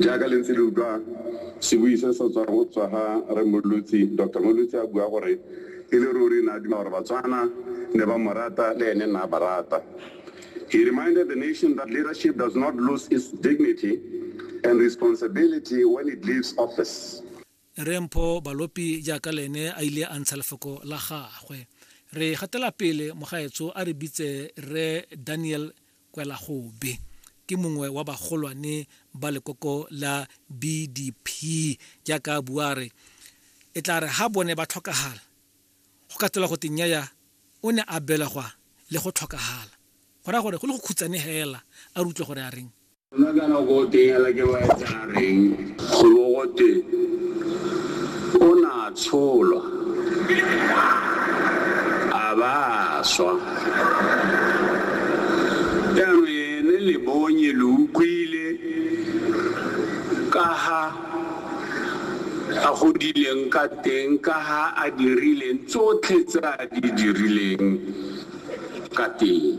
Jaaka le ntse le utlwa sebui se se tswang go tswa ga Rre Mmolotsi, Doctor Mmolotsi a bua gore e le ruri ne a duma gore Batswana ne ba mo rata le ene ne a ba rata. He reminded the nation that leadership does not lose its dignity and responsibility when it leaves office. Rre Mpho Balopi jaaka le ene a ile a ntsha lefoko la gagwe. Re gatela pele, mogaetsho a re bitse Rre Daniel Kwelagobe ke mongwe wa bagolwane ba lekoko la BDP jaaka a bua a re e tla re ha bone ba tlhokagala go ka tsela go te nnyaya o ne a belegwa le go tlhokagala go raya gore go le go khutsane hela a re utlwe gore a reng. Gona jaana go teng hela ke loetsa reng go bo go twe o ne a tsholwa a ba a swa? Jaanong ene le bonye lo utlwile ka ha a godileng ka teng, ka ha a dirileng tsotlhe tse a di dirileng ka teng.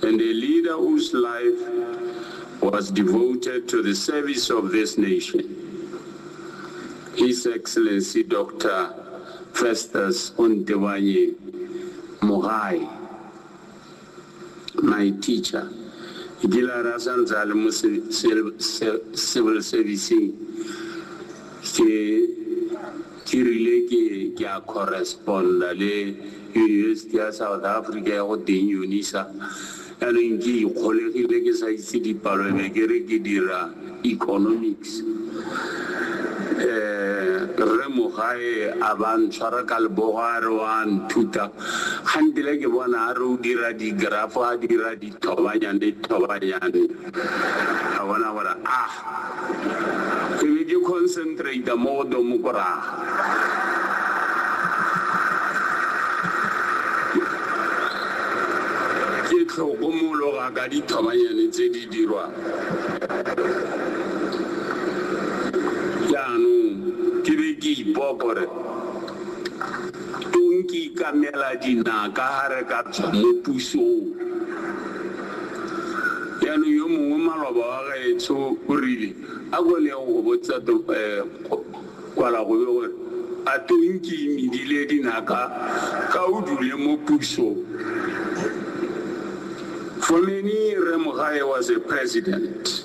And a leader whose life was devoted to the service of this nation, His Excellency Dr. Festus Ontewanye Mogai, my teacher. Ke kile a re a sa ntse a le mo se- se- se- civil servicing ke Ke rile ke ke a correspond-a le Yunibesiti ya South Africa ya go teng Unisa, yanong ke ikgolegile ke sa itse dipalo ebe ke re ke dira economics. Rre Mogae a ba ntshwara ka lebogo a re o a nthuta, kgantele ke bona a re o dira di-graph a dira dithobanyane thobanyane ka bona gore a. Ke be ke concentrate mo go domokoraga. Ke tlhokomologa ka dithobanyane tse di dirwang. Jaanong ke be ke ipopa gore Tong ke ikamela dinaka ha re ka tswa mo pusong. Jaanong yo mongwe maloba wa gaetsho o rile, A ko le yeng go botsa Tong Kwalagobe gore a Tong ke imedile dinaka ka o dule mo pusong. For many Rre Mogae was a president.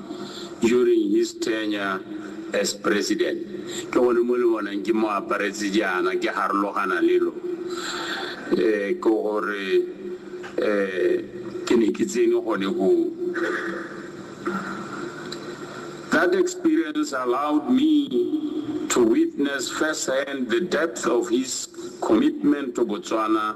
during his tenure as president, ke gone mo le bonang ke mo aparetse jaana ke harologana le lo um ke gore um ke ne ke tsene gone koo. That experience allowed me to witness first hand the depth of his commitment to Botswana